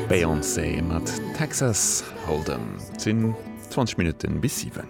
Beyoncé mat Texas Hold'em. Et sinn 20 Minutten bis 7.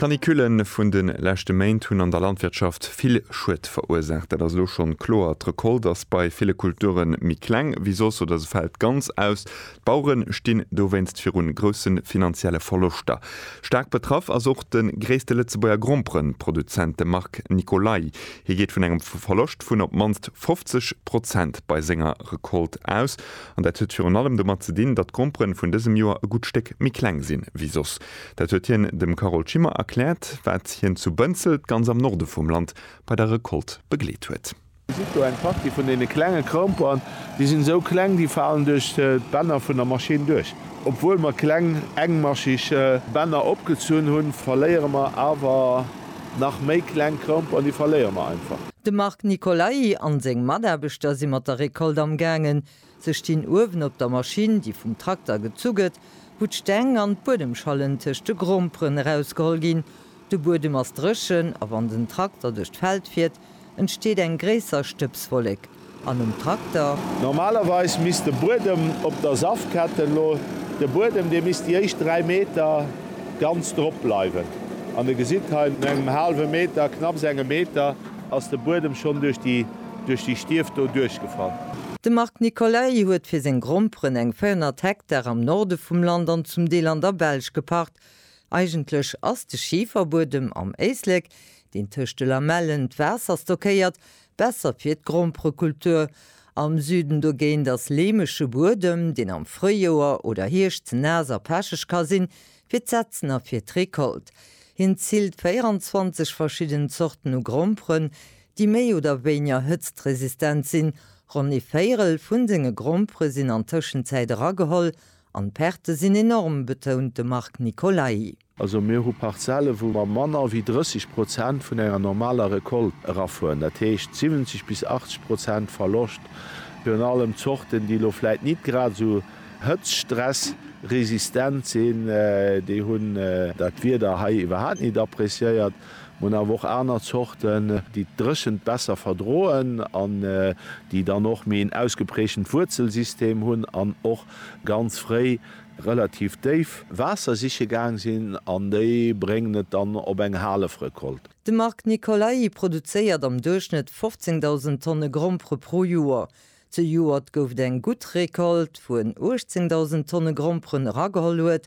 D'Canicule vun de leschte Méint hunn an der Landwirtschaft vill Schued verursaacht. Dat ass elo schonn kloer. D'Recolte ass bei ville Kulture méi kleng wéi soss oder se fält ganz aus. D'Bauere stinn dowéinst virun grousse finanzielle Verloschter. Staark betraff ass och de gréisste Lëtzebuerger Gromperen-Produzent, de Marc Nicolay. Hie geet vun engem Verloscht vun op d'mannst 50 Prozent bei senger Recolte aus. An dat huet virun allem domat ze dinn, datt d'Gromperen vun dësem Joer e gutt Stéck méi kleng sinn ewéi soss. Dat huet hien dem Carole Schimmer erkläert, wat hien zu Bënzelt, ganz am Norde vum Land, bei der Recolte begleet huet. Gesitt do eng Partie vun deene klenge Chromeperen. Déi sinn esou kleng, déi falen duerch d'Bänner vun der Maschinn duerch. Obwuel mer kleng engmaschig Bänner opgezunn hunn, verléiere mer awer nach méi kleng Chromeperen, déi verléiere mer einfach. De Marc Nicolai an seng Mataarbechter si mat der Recolte amgaangen. Se stinn uewen op der Maschinn, déi vum Trakter gezu gëtt, wou d'Steng an d'Buedemschallen tëscht de Gromperen erausgeholl ginn. De Buedem ass dréchen a wann den Trakter duerch d'Feld fiert, entsteet eng gréisser Stëbswollek an um Trakter. Normalerweis misst de Buedem op der Safketten lo, de Buedem, dee misst déi éischt 3 Meter ganz drop bleiwen. An e gesitt hei, no engem haalwe Meter, knapps engem Meter, ass de Buedem schonn duerch déi. Duerch déi Stief do duerchgefall. De Marc Nicolay huet fir seng Gromperen eng 400 Hektar am Norde vum Land an zum Deel an der Belsch gepacht. Eigentlech ass de Schiferbuedem am Éislek, deen tëscht de Lamellen d'Waasser stockéiert, besser fir d'Gromperekultur. Am Süden dogéint ass leemege Buedem, deen am Fréijoer oder Hierscht ze naass a pecheg ka sinn, fir d'Setzen a fir d'Recolte. Hien zilt 24 verschidden Zorten u Gromperen, déi méi oder wéinger hëtztresistent sinn, ronn ee Véirel vu senge Grompere sinn an Tëschenzäit erageholl an d'Perte sinn enorm, betount de Marc Nicolai. Also mir hu Parzelle wou mer manner wéi 30 Prozent vun enger normaler Recolte erafueren, dat heescht 70 bis 80 Prozent Verloscht, virun allem Zorten, déi elo vläit nit grad esou hëtztstressresistent sinn, déi hunn dat Wieder hei iwwerhaapt nit appreciéiert. Mir hunn awer och aner Zorten, déi d'Dréchent besser verdroen an déi dann och méi en ausgeprägtent Wuerzelsystem hunn an och ganz fréi relativ déif Waasser siche gaang sinn an déi bréngen et dann op eng Halefrecolte. De Marc Nicolai produzéiert am Duerchschnëtt 15.000 Tonne Grompere pro Joer. Zejoert gouf et eng gutt Recolte, wou en 18.000 Tonne Gromperen erageholl huet,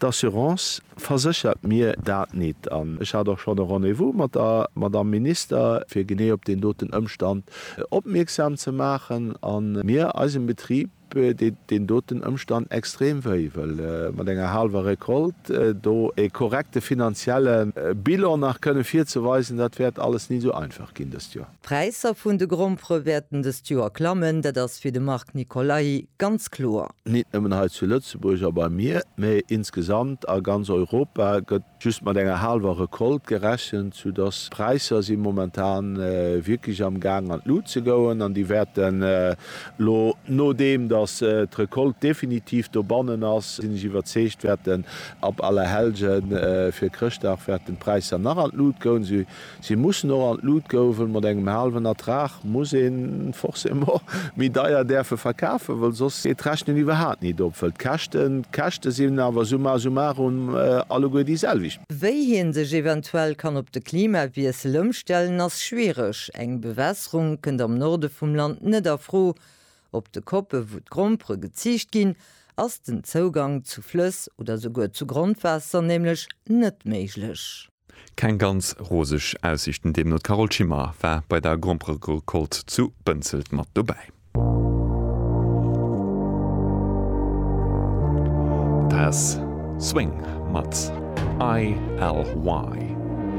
D'Assurance verséchert mir dat nit an ech hat och schonn e Rendez-vous mat der Madamm Minister, fir genee op deen doten Ëmstand opmierksam ze maachen. A mir, eisem Betrib, deet deen doten Ëmstand extrem wéi, well mat enger haalwer Récolte do e korrekte finanzielle Bilan nach kënne virzeweisen, dat wäert alles nit esou einfach ginn dëst Joer. D'Präisser vun de Grompere wäerten dëst Joer klammen, dat ass fir de Marc Nicolai ganz kloer. Nit nëmmen hei zu Lëtzebuerg a beim Mier, mee insgesamt a ganz Europa gëtt just mat enger haalwer Recolte gerechent, sou dass d'Präisser si momentan wierklech am Gaang an d'Lut ze goen an déi wäerten elo, nodeem dass d'Recolte definitiv dobannen ass, sinn ech iwwerzeegt, wäerten ab Allerhellgen fir Chrëschtdag wäerten d'Präisser nach an d'Lut goen, Si mussen och an d'Lut gouwen. Mat engem haalwen Ertrag muss een forcément méi deier däerfe verkafen, well soss geet d'Rechnen iwwerhaat nit op, well d'Käschten d'Käschte sinn awer summa summarum alleguer déi selwecht. Wéi hien sech eventuell kann op de Klimawiessel ëmstellen ass schwiereg. Eng Bewässerung kënnt am Norde vum Land net a Fro. Op de Koppe wou d'Grompere geziicht ginn, ass den Zougang zu Flëss oder souguer zu Grondwaasser nämlech net méiglech. Keng ganz roseg Aussiichten deemno. D'Carole Schimmer war bei der Gromperecolte zu Bënzelt mat dobäi. Dat ass Swing mat ILY.